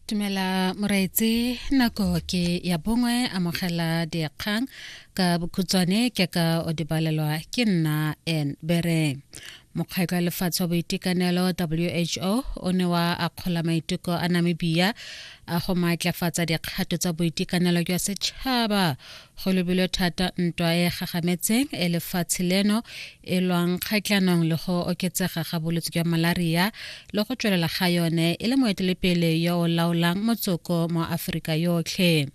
Tumela moraetse nako ke ya bongwe amogela dikgang ka bokhutswane ke ka o dibalelwa ke nna en bereng mokgweko ya lefatshe wa boitekanelo who o ne wa akgola maiteko a namibia a go maatlafatsa dikgato tsa boitekanelo jwa setšhaba go lebilwe thata ntwa e gagametseng e lefatshe leno e lwang kgatlhanong le go oketsega ga bolwetse jwa malaria le go tswelela ga yone e le moetelepele yo o laolang motsoko mo aforika yotlhe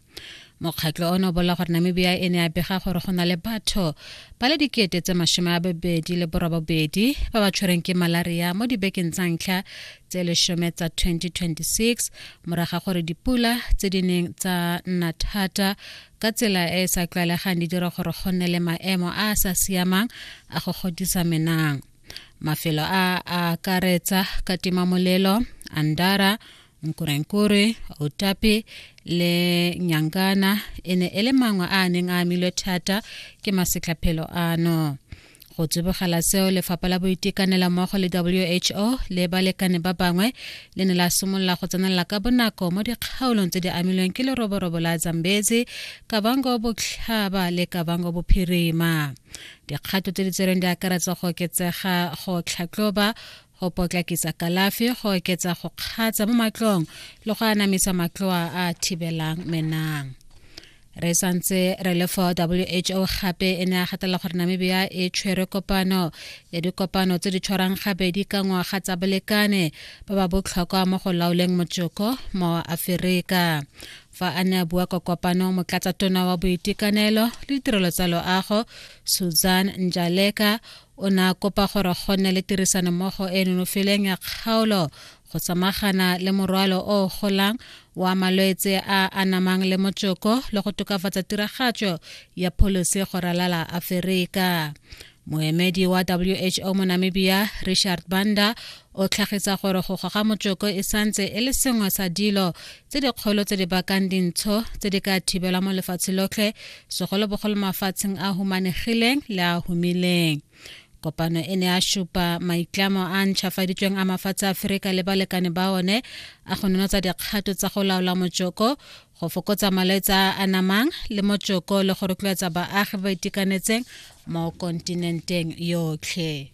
mokgatlho ono o bolela gore namibia e ne ya bega gore go na le batho ba le dikete tse masome a babedi le borobabedi ba ba tshwereng ke malaria mo dibekeng tsa ntlha tse leshome tsa 2026 moraga gore dipula tse di neng tsa nna thata ka tsela e e sa tlwaelegang di dira gore go nne le maemo a a sa siamang a go godisa menang mafelo a a akaretsa katimamolelo andara nkurenkure otapi le nyangana e ne e le mangwe a a neng a amilwe thata ke masetlhaphelo ano go tsibogela seo lefapha la boitekanela mmogo le who le balekane ba bangwe le ne la simolola go tsenelela ka bonako mo dikgaolong tse di amilweng ke leroborobo la zambezi kabango botlhaba le kabango bophirima dikgato tse di tsereng di akaretsa go oketsega go tlhatloba go potlakisa kalafi go oketsa go kgatsa mo matlong le go anamisa matloa a a thibelang menang re santse re le for who gape e ne a gatela gore namibia e tshwere kopano ya dikopano tse di tshwarang gabedi ka ngwaga tsa bolekane ba ba botlhokwa mo go laoleng motsoko mo aferika fa a ne a bua kwa kopano motlatsa tona wa boitekanelo le ditirelo tsa loago susan njaleka O ne a kopa gore go nne le tirisanommogo e nonofeleng ya kgaolo go samagana le morwalo o o golang wa malwetse a anamang le motsoko le go tokafatsa tiragatso ya pholisi go ralala Aferika. Moemedi wa WHO mo Namibia, Richard Banda, o tlhagisa gore go goga motsoko e santse e le sengwe sa dilo tse dikgolo tse di bakang dintsho tse di ka thibelwa mo lefatshe lotlhe segolobogolo mafatsheng a humanegileng le a humileng kopano e ne a supa maitlamo a ntšhafaditsweng a mafatshe a aferika le balekane ba one a go nonotsa dikgato tsa go laola motsoko go fokotsa malwetse a a namang le motsoko le go rotloetsa baagi ba itekanetseng mo kontinenteng yotlhe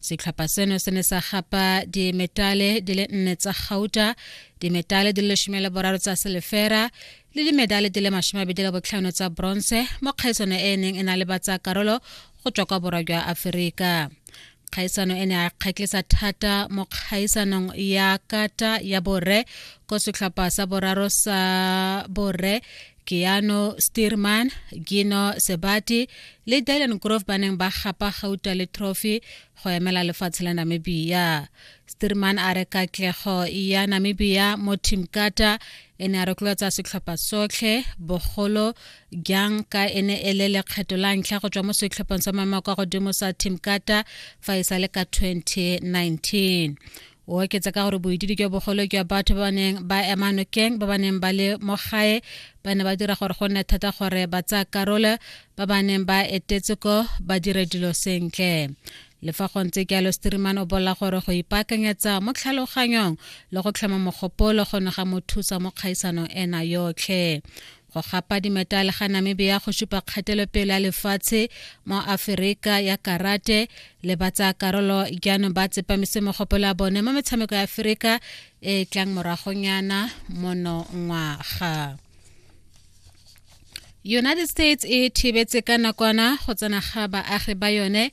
setlhopha seno se ne sa gapa dimetale di le nne tsa gauta dimetale di le lesome le boraro tsa selefera le dimedale di le masome abedi le botlhano tsa bronze mo kgaisano e e neng e na le batsa karolo go tswa kwa borwa jwa aforika kgaisano e ne a kgatlisa thata mo kgaisanong ya kata ya borre ko setlhopha sa boraro sa borre keano steerman gino sebati le dylan grove ba neng ba gapa gauta le trophy go emela lefatshe la namibia steerman a re katlego ya namibia mo team kata e ne a rotloetsa setlhopha sotlhe bogolo jang ka e ne e le lekgetho la ntlha go tswa mo setlhopheng sa maemo kwa godimo sa team kata fa e sa le ka 2019 o oketsa ka gore boitidi jwa bogolo jwa batho ba ba neng ba ema nokeng ba ba neng ba le mo gae ba ne ba dira gore go nne thata gore ba tsaya karolo ba ba neng ba etetse ko ba dire dilo sentle le fa go ntse jalo streaman o bolela gore go ipaakanyetsa mo tlhaloganyong le go tlhoma mogopolo go ne ga mo thusa mo kgaisanong ena yotlhe go gapa dimetale ga namibia go supa kgatelopele ya lefatshe mo aferika ya karate le ba tsaya karolo jaanong ba tsepamise mogopolo ya bone mo metshameko ya aferika e e tlang moragonyana monongwaga united states e thibetse ka nakwana go tsena ga baagi ba yone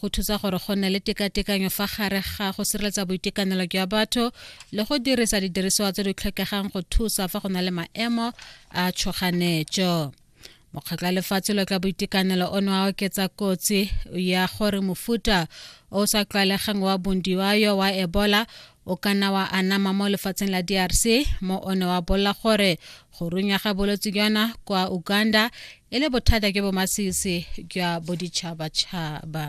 go thusa gore go nne le tekatekanyo fa gare ga go sireletsa boitekanelo jwa batho le go dirisa didirisiwa tse di tlhokegang go thusa fa go na le maemo a tshoganetso mokgatlho wa lefatshe lo tla boitekanelo o ne wa oketsa kotsi ya gore mofuta o sa tlwaelegang wa bondiwayo wa ebola o ka nna wa anama mo lefatsheng la drc mo o ne wa bolela gore go runya ga bolwetse jona kwa uganda e le bothata ke bomasisi jwa boditšhabatšhaba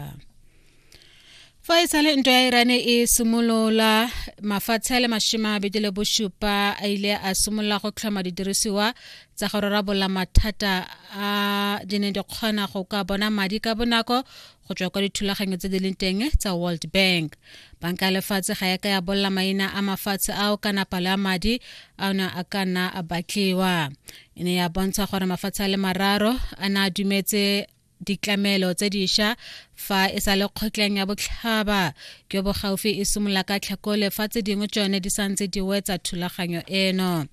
fa e sale ntwa ya irane e simolola mafatshe a le mashima a bedi le bosupa a ile a simolola go tlhoma didirisiwa tsa go rarabolla mathata a di ne di kgona go ka bona madi ka bonako go tswa kwa dithulaganyo tse di leng teng tsa world bank banka ya lefatshe ga ya ka ya bolela maina a mafatshe ao kana palo ya madi a ne a ka nna a batliwa e ne ya bontsha gore mafatshe a le mararo a ne a dumetse ditlamelo tse diša fa e sa le kgotleng ya botlhaba jo bo gaufi e simolola ka tlhakole fa tse dingwe tsone di santse di wetsa thulaganyo eno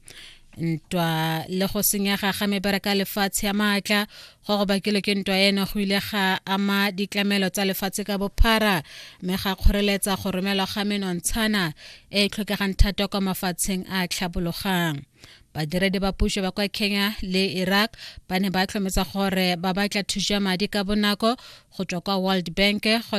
ntwa le go senyega ga mebereka ya lefatshe ya maatla go go bakilwe ke ntwa eno go ile ga ama ditlamelo tsa lefatshe ka bophara mme ga kgoreletsa go romelwa ga menontshana e e tlhokegang thata kwa mafatsheng a tlhabologang badiredi ba puso ba kwa kenya le iraq ba ne ba tlhometsa gore ba batla thuso ya madi ka bonako go tswa kwa world bank go